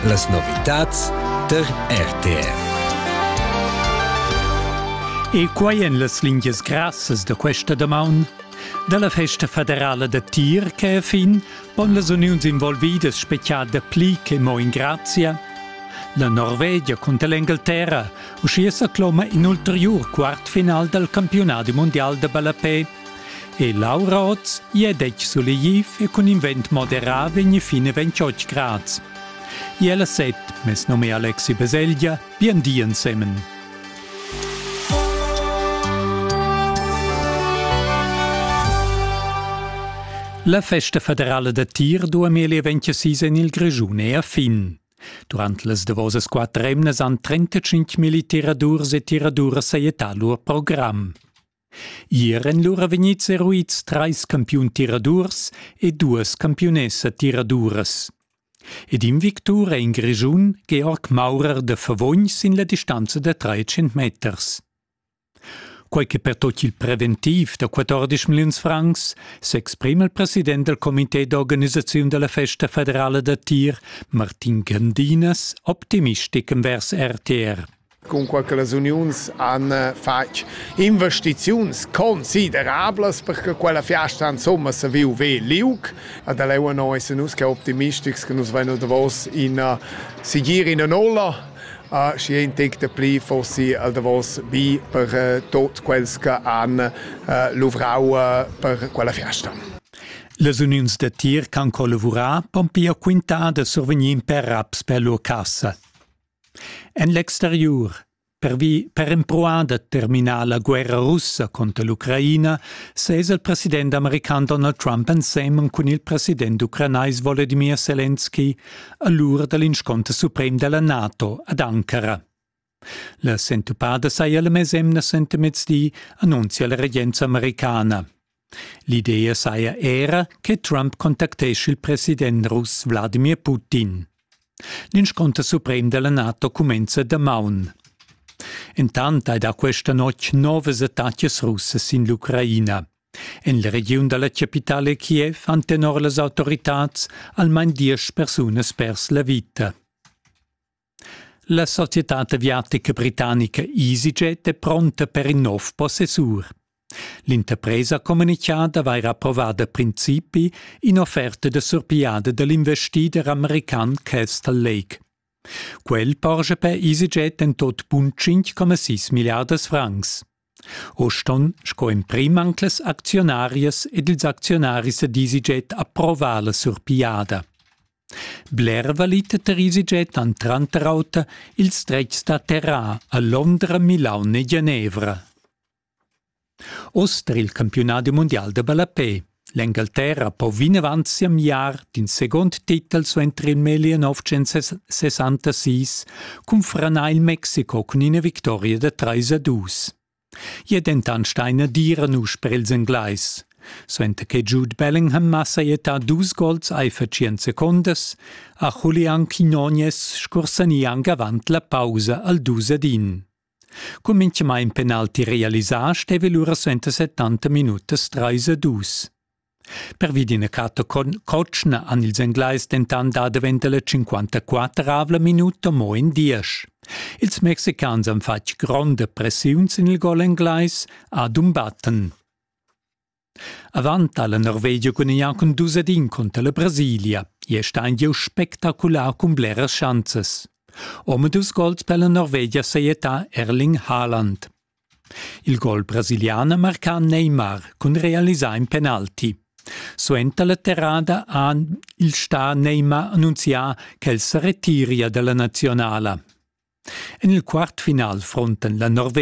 Las novitads tar RTR. E quai en las lingias grassas da questa damaun da la festa federala da tir che fin pon las uniuns involvidas spezial da pli che mo in grazia. La Norvegia cunter l'Engalterra uschia sa cloma in ulteriur quart final dal campionadi mondial da ballapè E Laura oz è detg sulegliv e cun in vent moderà vegn fin a 28 grads. E ella set, mes num è Alexi Baselgia, bien di ensemen. La festa federala da tir 2026 en il Grischun è a fin. Durant las davosas quatter emnas han 35 militiradurs e tiraduras sajettà lur program. Ier èn lura vegnids eruids trais campiun tiradurs e duas campiunessa tiraduras. Ed in victur è in Grischun Georg Maurer de Favogn sin la distanza da 300 meters. Quai che per tot il preventiv da 14 milliuns francs s'exprima il president del comité d'organisaziun della festa federala da tir, Martin Gandinas, optimistic envers RTR. cunquai che las uniuns han fatg investiziuns considerablas per che quella fiasta insomma se viu ve liug. Ad Eleonor essen nus che optimistics che nus vein davos ina sigir in ola uh, și ein tec de pli fossi al davos bi per uh, tot quels che han uh, luvrau uh, per quella fiasta. Las uniuns da tir can collavurar pon pia quintar da survegnir per raps per lur cassa. En l'exteriur Pervi per empruar da terminar la guerra russa cunter l'Ucraina sez il president american Donald Trump ensemen cun il president ucranais Volodymyr Zelensky a l'ura da l'inscunter suprem della NATO ad Ankara. La sentupada saja la mesemna sentemezdi, annunzia la regenza americana. L'idea saja era che Trump contactescha il president russ Wladimir Putin. L'inscunter suprem della NATO cumenza damaun. Entant hai da questa notg novas attacas russas in l'Ucraina. En la regiun dalla capitale Kiev han tenor las autoritads almain diesch persunas pers la vita. La societad aviatica britannica EasyJet è pronta per in nov possessur. L'interpresa communicà d'avair approvà da principi in'offerta da surpigliada da l'investider american Castle Lake. Quel porscha per EasyJet en tot bun 5,6 milliardas francs. Uss ston sco emprim anc las acziunarias ed ils acziunaris ed EasyJet approvar la surpigliada. Bler valita tar EasyJet han tranter auter ils dretgs da terra a Londra, Milaun e Genevra. Oz tar il campiunadi mundial da ballapè. L'Engalterra po vinavant siamiar d'in segund titel suenter il meglier 966 cun franar il Mexico cun ina victoria da 3 a 2. I è dentant staina dira nus per ils Englais. Suenter che Jude Bellingham ha sajettà dus gols aifer tschient secondas, ha Julian Quinones scursani anc avant la pausa al dus ad in. Cun minchamaing penalti realisà steva el ura suenter 70 minutas trais e dus. Pervi d'ina crata cotschna han ils Englais dentant dà davent la 54 minuta mo in diesch. Ils mexicans han fatg gronda pressiun sin il gol englais Adum Batten. Avant ha la Norvegia gudagnà cun dus ed in cunter la Brasilia. Gli è stà in gieu spectacular cun bleras schanzas. Omadus gols per la Norvegia sajettà Erling Haaland. Il gol brasilian ha marcà Neymar cun realisar in penalti. Suenter la terrada ha il star Neymar annunzià ch'el sa retiria dalla nazionala. En il quart final frontan la Norvegia